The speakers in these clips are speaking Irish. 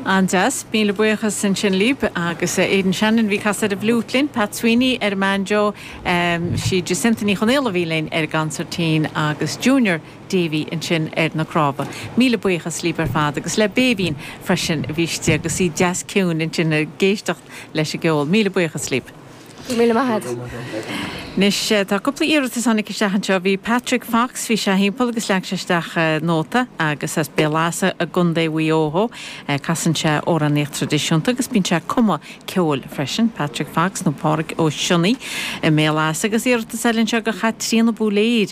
An-deas, míle buíochas ansin libh. Agus a Aidan Shannon a bhí ag casadh ar an bhfliút linn, Pat Sweeney ar an mbanjo, sí Jacinta Ní Chonaola a bhí linn ar an gcansairtín agus Junior Davey ansin ar na cnámha. Míle buíochas libh ar fad agus le Béibhinn freisin a bhí istigh agus í deas ciúin ansin ag éisteacht leis an gceol. Míle buíochas libh. Míle maith a't. Anois, tá cúpla iarratas a tháinig isteach anseo. Bhí Patrick Fox, bhí sé thimpeall agus leag sé isteach nóta agus as Béal Easa i gContae Mhuigh Eo dhó. Casann sé amhránaíocht tradisiúnta agus bíonn sé ag cumadh ceoil freisin, Patrick Fox nó Páraic Ó Sionnaigh i mBéal Easa. Agus iarratas eile anseo go Chaitríona Búléir.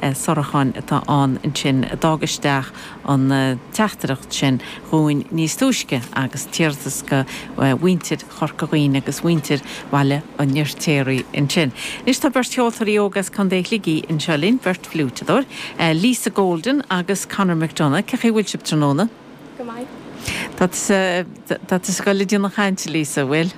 sáracháin atá ann ansin a d'fhág isteach an teachtaireacht sin dhúinn níos túisce agus tá iarratas go mhuintir Chorca Dhuibhne agus mhuintir Bhaile an Fhirtéaraigh ansin. Anois tá beirt cheoltóirí óga as Contae Shligigh anseo linn, beirt fhliúiteadóir, Lisa Golden agus Conor McDonagh. Cé chaoi bhfuil sibh tráthnóna? Go maith. Tá tu sa, tá tu sa scoil ag déanamh cainte, Lisa, bhfuil?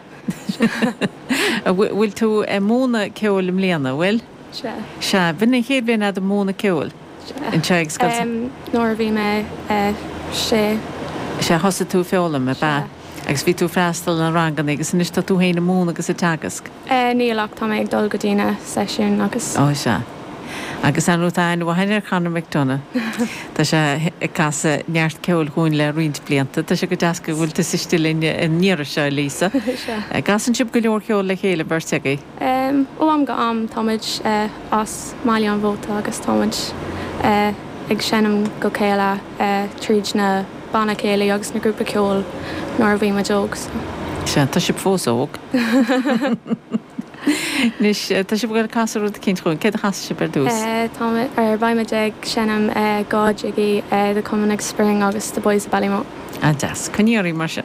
Bhfuil tú ag múineadh ceoil i mbliana, bhfuil? Sea, b'in an chéad bhliain fhada múineadh ceoil. Sea. anseo ag Scoil San. nuair a bhí mé sé. Sea, thosaigh tú ag foghlaim, ab ea? Sea. Agus bhí tú ag freastal ar na ranganna agus anois tá tú féin ag múineadh agus ag teagasc. Níl, ach tá mé ag dul go dtí na seisiúin agus. Ó, sea. Agus an rud atá an-mhaith ar Chonor McDonagh, tá sé ag casadh neart ceoil chugainn le roinnt blianta. Tá sé go deas go bhfuil tusa istigh linn an iarraidh seo, a Lisa. Sea. Casann sibh go leor ceoil le chéile, beirt agaibh. Ó am go h-am táimid as mBaile an Mhóta agus táimid ag seinm le chéile tríd na banna céilí agus na grúpa ceoil nuair a bhímid óg so. Sea, tá sibh fós óg. Anois tá sibh ag iarraidh casadh rud éicint dhúinn. Céard a chasfas sibh ar dtús? Táimid, or beimid ag seinm dhá jig, The Coming of Spring agus The Boys of Ballymote. An-deas. Coinnigí oraibh mar sin.